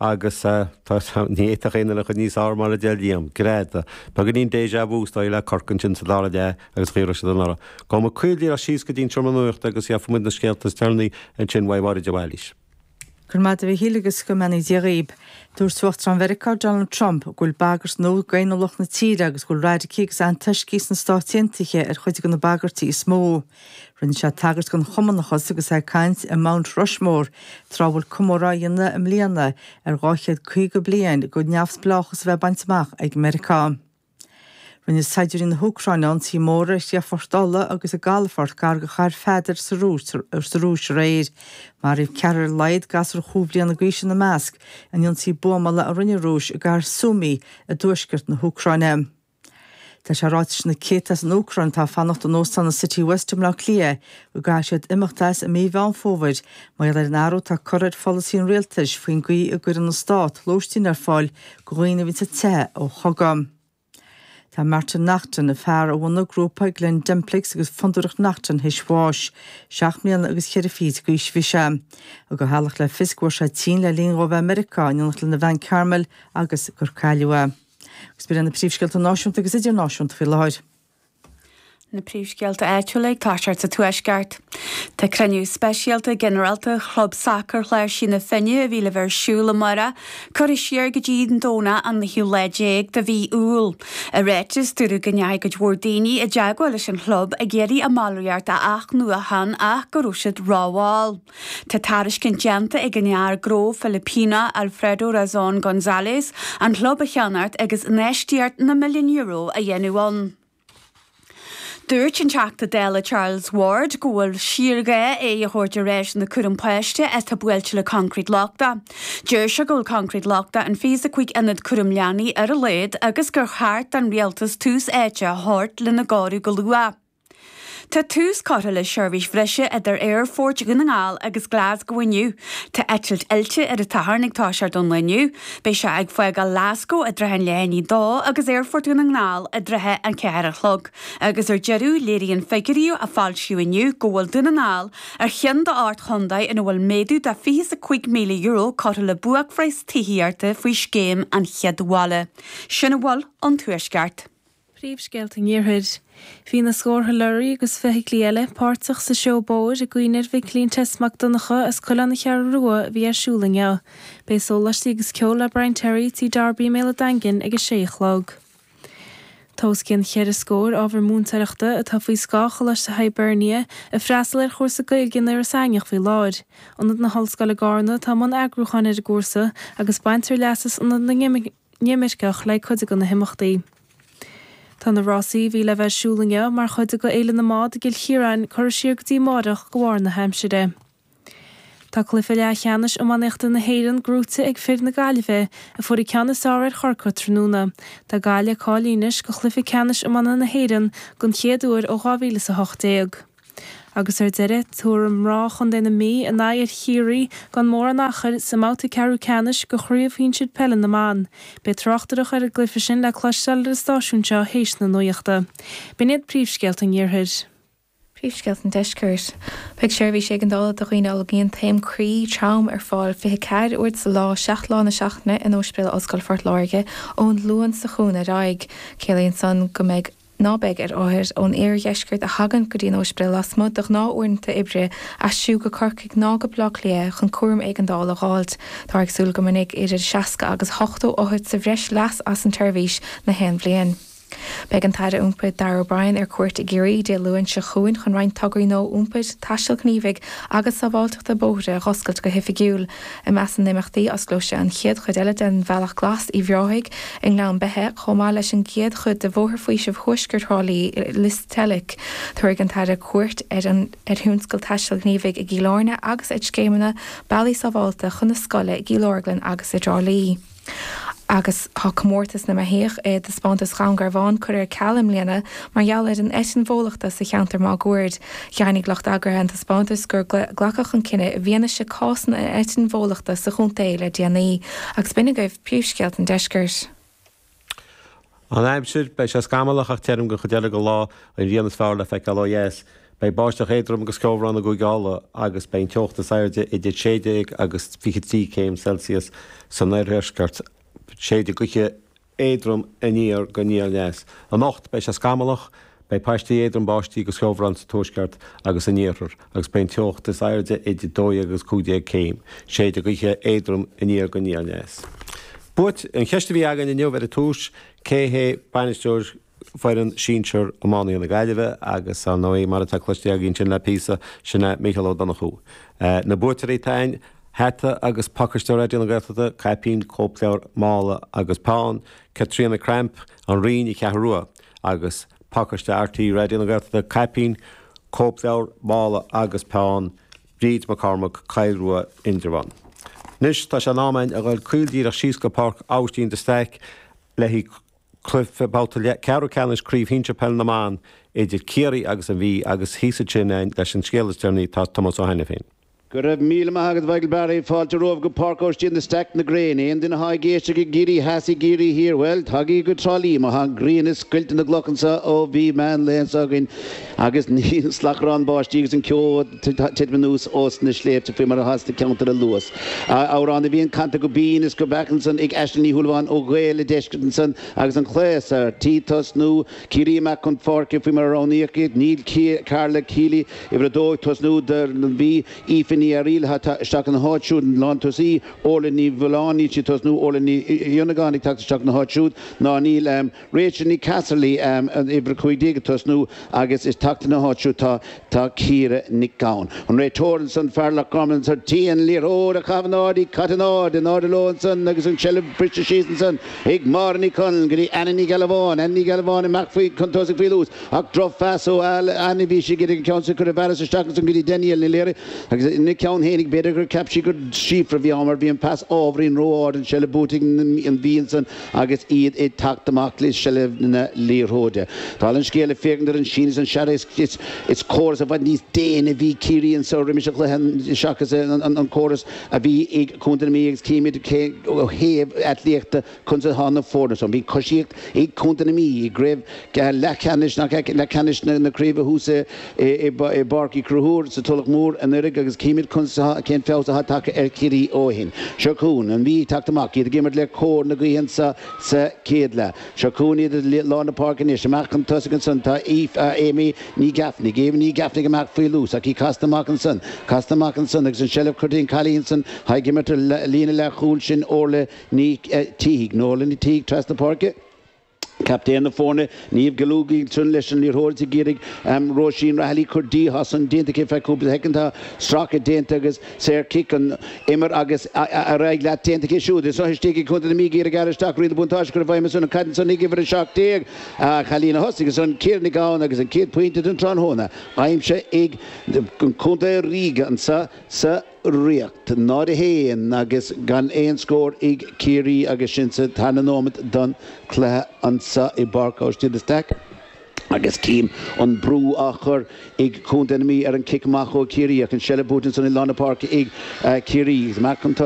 agus tá ní fhéadfadh aon duine a chur níos fearr mar a deir Liam, greadadh. Beagáinín déjà vu is dóigh le Cork ansin sa dara leath agus dhírigh siad anuraidh. Gabhfaidh muid caol díreach síos go dtí an seomra nuachta agus gheobhaidh muid na scéalta is deireanaí ansin uaidh Mháire de Bhailís. Go raibh maith agat a Mhichíl agus go mbeannaí Dia dhaoib. Dúirt Uachtarán Mheiriceá Donald Trump go bhfuil bagairt nua d'fhéiniúlacht na tíre agus go bhfuil radacaigh agus antoiscigh sna Stáit Aontaithe ar chuid de na bagairtí is mó. Rinne sé tagairt don Chumannachas agus é ag caint i Mount Rushmore tráth a bhfuil comóradh á dhéanamh i mbliana ar 250 bliain de neamhspleáchas a bheith bainte amach ag Meiriceá. Rinne saighdiúirí na hÚcráine ionsaí mór ar chríochfort ola agus i gcalafort gar do Chathair Pheadair sa Rúis aréir. Maraíodh ceathrar ar a laghad, gasúr chúig bhliana d'aois ina measc, in ionsaí buamála a rinne an Rúis i gcathair Sumy i dtuaisceart na hÚcráine. Tá sé ráite leis na céadta as an Úcráin atá ag fanacht in óstán Citywest i mBleá Cliath go gcaithfidh siad imeacht as i mí Mheán Fómhair mar gheall ar an athrú atá curtha ar pholasaí an rialtais faoin gcaoi a gcuireann an stát lóistín ar fáil do dhaoine atá ag teitheadh ó chogadh. Tá Martin Naughton, an fear a bhunaigh an grúpa Glen Dimplex agus Fondúireacht Naughton th'éis bháis. Seacht mbliana agus cheithre fichid d'aois a bhí sé. Thug a theaghlach le fios go bhfuair sé tinn le linn dhó a bheith i Meiriceá in éineacht lena bhean Carmel agus gur cailleadh é. Agus b'in iad na príomhscéalta náisiúnta agus idirnáisiúnta faoi láthair. Na príomhscéalta áitiúla ag toiseacht sa Tuaisceart. Tá cruinniú speisialta ginearálta Chlub Sacair Chláirsigh na Finne a bhí le bheith ar siúl amárach curtha siar go dtí an Domhnach an naoú lá déag de mhí Iúil. I ráiteas, dúradh go ndeachaigh cuid mhór daoine i dteagmháil leis an chlub ag iarraidh a mballraíocht a athnuachan ach go raibh siad rámhall. Tá tairiscint déanta ag an fhear gnó Filipíneach Alfredo Razon Gonzalez an chlub a cheannacht agus infheistíocht na milliún euro a dhéanamh ann. Dúirt an Teachta Dála Charles Ward go bhfuil síorghá aghaidh a thabhairt ar áiseanna cúraim páistí atá buailte le coincréit lochtach. Deir sé go bhfuil coincréit lochtach in 25 ionad cúram leanaí ar a laghad agus gur cheart don rialtas tús áite a thabhairt lena gcóiriú go luath. Tá tús curtha le seirbhís bhreise idir Aerfort Dhún na nGall agus Glaschú inniu. Tá eitilt fhillte ar an tSatharn ag toiseacht ón lá inniu. Beidh sé ag fágáil Ghlaschú i dtrátha an leath i ndiaidh a 2 agus Aerfort Dhún na nGall i dtrátha an 4 a chlog agus ar deireadh léiríonn figiúirí a foilsíodh inniu go bhfuil Dún na nGall ar cheann d'ocht gcontae ina bhfuil méadú de €25,000 curtha le buaicphraghas tithíochta faoi Scéim an Chéad Bhaile. Sin a bhfuil ón Tuaisceart. Príomhscéalta an Iarthair. Bhí na scórtha leoraí agus feithiclí eile páirteach sa seó bóthair i gcuimhne ar Mhicilín Tess Mac Donncha as Cuilleán, An Cheathrú Rua a bhí ar siúl inniu. Beidh sólaistí agus ceol le Brian Terry, Tí Darby i mBéal a'Daingin ag a sé a chlog. Tá os cionn cheithre scór ábhar múinteoireachta atá faoi scáth Choláiste Hibernia ag freastal ar chúrsa Gaeilge in Iorras Aithneach faoi láthair. Ionad na hOllscoile i gCárna atá i mbun eagrúcháin ar an gcúrsa agus baintear leas as Ionad na. nImirceach le cuid de na himeachtaí. Tá na rásaí a bhí le bheith ar siúl inniu mar chuid de Fhéile na mBád i gCill Chiaráin curtha siar go dtí amáireach de bharr na haimsire. Tá cluiche leathcheannais iománaíochta na hÉireann gnóite ag fir na Gaillimhe a fuair an ceann is fearr ar Chorcaigh tráthnóna. Tá Gaillimh cáilithe anois do chluiche ceannais iomána na hÉireann den chéad uair ó 2018. agus ar deireadh, tabharfaidh mná Chontae na Mí a n-aghaidh ar Chiarraí gan mórán achair, sa mbabhta ceathrú ceannais de Chraobh Shinsir Peile na mBan. Beidh tráchtaireacht ar an gcluiche sin le cloisteáil ar an stáisiún seo théis na nuachta. B'in iad príomhscéalta an Iarthair. Príomhscéalta an Deiscirt. Beidh seirbhís éigeandála do dhaoine a fhulaingíonn taom croí trom ar fáil 24 uair sa lá, 7 lá na seachtaine, in Óispidéal Ollscoile Phort Láirge ón Luan seo chugainn ar aghaidh. Ciallaíonn san go mbeidh. ná beidh ar othair ón oirdheisceart a thagann go dtí an óispidéal lasmuigh de ghnáth-uaireanta oibre aistriú go Corcaigh ná go Baile Átha Cliath chun cúram éigeandála a dh'fháilt. Táthar ag súil go mbainfidh idir 60 agus 80 othar sa bhreis leas as an tseirbhís gach aon bhliain. Beidh an tAire Iompair Darragh O'Brien ar cuairt i gCiarraí Dé Luain seo chugainn chun roinnt tograí nua iompair, taistil ghníomhaigh agus sábháilteachta bóithre a dh'oscailt go hoifigiúil. I measc na n-imeachtaí, osclóidh sé an chéad chuid eile den Bhealach Glas Uíbh Ráthaigh i nGleann Beithe, chomh maith leis an gcéad chuid de Bhóthar Faoisimh Thuaisceart Thrá Lí i Lios Teilic. Tabharfaidh an tAire cuairt ar thionscadal taistil ghníomhaigh i gCill Airne agus ar scéimeanna bealaí sábháilte chun na scoile i gCill Orglan agus i dTrá Lí. agus tá comórtas na mbeithíoch i dtaispeántas Dhún Garbhán curtha ar ceal i mbliana mar gheall ar an eitinn bhólachta sa cheantar máguaird. Dheimhnigh lucht eagraithe an taispeántais gur glacadh an cinneadh i bhfianaise cásanna an eitinn bhólachta sa chontae le déanaí, agus b'in agaibh príomhscéalta an deiscirt. An Aimsir, Beidh sé scamallach ach tirim don chuid eile den lá, an ghrian is fearr le feiceáil ó dheas. Beidh báisteach éadrom agus ceobhrán i gCúige Uladh agus beidh an teocht is airde idir 16 agus 23 céim Celsius san oirdheisceart. Séideadh gaoithe éadrom aniar go aniar aneas. Anocht, beidh sé scamallach. Beidh paistí éadrom báistí agus ceobhrán sa tuaisceart agus in iarthar, agus beidh an teocht is airde idir 12 agus 15 céim, séidfidh gaoth éadrom aniar go aniar-aneas. Bhuel an cheist a bhí againn inniu ar an tús, cé hé bainisteoir foireann sinsear iománaithe na Gaillimhe agus ar ndóigh mar atá cloiste againn sin le píosa, sin é Mícheál Ó Donnchú. Na buaiteoirí, Tain, hata agus pacáiste Raidió na Gaeltachta, caipín, cóipleabhar, mála agus peann, Caitríona Cramp, An Rinn, An Cheathrú Rua. agus pacáiste RTÉ Raidió na Gaeltachta, caipín, cóipleabhar, mála agus peann, Bríd Mac Cormaic, Coill Rua, Indreabhán. Anois tá sé in am a ghoil caol díreach síos go Páirc Aibhistín de Staic, le haghaidh cluife babhta ceathrú ceannais Craobh Shinsear Peil na mBan idir Ciarraí agus an Mhí agus thíos ansin, leis an scéal is deireanaí, tá Tomás Ó hAiniféin. Go raibh míle maith agat a Mhichael Barry, fáilte romhaibh go Páirc Óistín de Staic na Gréine. Aon duine atá ag éisteacht i gCiarraí Theas, i gCiarraí Thiar, bhuel, tagaigí go Trá Lí mar tá an ghrian ag scoilteadh na gcloch anseo ó bhí meán lae anseo againn agus níl slacharán báistí agus an ceo ag titim anuas ós na sléibhte faoi mar atá sna ceantair a luas. Amhrán na bhFiann canta go binn is go beacht ansan ag Aisling Ní Shúilleabháin ó Ghaeil an Deiscirt ansan agus an clais ar tí tosnú Ciarraí amach chun páirce faoi mar a roghnaíodh iad, níl Karla Kealy, uimhir 2, ag tosnú don Mhí, Aoife Ní Fhearaíl ag teacht isteach ina háit siúd, lántosaí, Órla Ní Mhealláin, níl sí ag tosnú, Órla Ní Fhionnagáin ag teacht isteach ina háit siúd, ná níl Rachel Ní Casserly, uimhir 15, ag tosnú agus ag teacht ina háit siúd. Tá. Tá Ciara Nic Gabhann, an réiteoir ansan, fear Loch Garman ansan, ar tí an liathróid a chaitheamh in airde, í caite in airde, in airde leo ansan agus an tseilbh ag briseadh síos ansan ag Máire Ní Chonaill go dtí Anna Ní Ghealbháin, Anna Ní Ghealbháin amach faoi chun tosaigh faoi luas ach drochphas ó Anna, bhí sí ag iarraidh an ceann sin a chur i bhfearas isteach ansan go dtí Danielle Ní Laoire agus ina ceann fhéinig, b'fhéidir gur cheap sí gur Síofra a bhí ann mar bhí an pas ábhairín ró-ard, an tseilbh buaite ag an Mhí ansan. agus iad ag teacht amach le seilbh na liathróide. Dála an scéil, le féachaint ar an síneadh is an searradh, is córas i bhfad níos déine a bhí ag Ciarraí anseo roimis an chluiche seachas an córas a bhí ag Contae na Mí agus címid cé ó thaobh aclaíochta conas atá na foirne san. Bhí coisíocht ag Contae na Mí i gCraobh Leathcheannais na Craoibhe thuas i i bPáirc Uí Chonchúir sa Tulach Mhór anuiridh agus chímid cén feabhas atá tagtha ar Chiarraí ó shin. Seo chugainn an Mhí ag teacht amach, iad ag imirt le cóir na gaoithe anseo sa chéad leath. Seo chugainn iad i lár na páirce anois. Amach chun tosaigh ansan tá Aoife Aimee Ní Gheaifnigh. Aimee Ní Gheaifnigh amach faoi luas ach í casta amach ansan, casta amach ansan agus an seilbh go dtí an cailín san atá ag imirt ar líne leathchúl sin Órlaith Ní Shíthigh, Órlaith Ní Shíthigh trasna páirce. Captaen na foirne, Niamh Gallogly, leis an liathróid ag iarraidh amh Róisín Rahilly cur di, tá san déanta aici feadh cúpla shoicind. Tá stracadh déanta agus saor cic an imir agus ar aghaidh leat déanta aici siúd. Is seo istigh ag Contae na Mí ag iarraidh aire isteach riail na buntáiste cur i bhfeidhm ar son an Cadhan san ag uimhir 17 an cailín a thosaigh ar son Ciara Nic Gabhann agus an céad pointe den tráthnóna aimsithe ag an Contae Ríoga anso sa ríocht, náid a haon agus gan aon scór ag Ciarraí agus sinn sa tarna nóimeat don chluiche anso i bPáirc Aibhistín de Staic agus cím an brú á chur ag Contae na Mí ar an cic amach ó Chiarraí ach an seilbh buaite ansan i lár na páirce ag Ciarraí.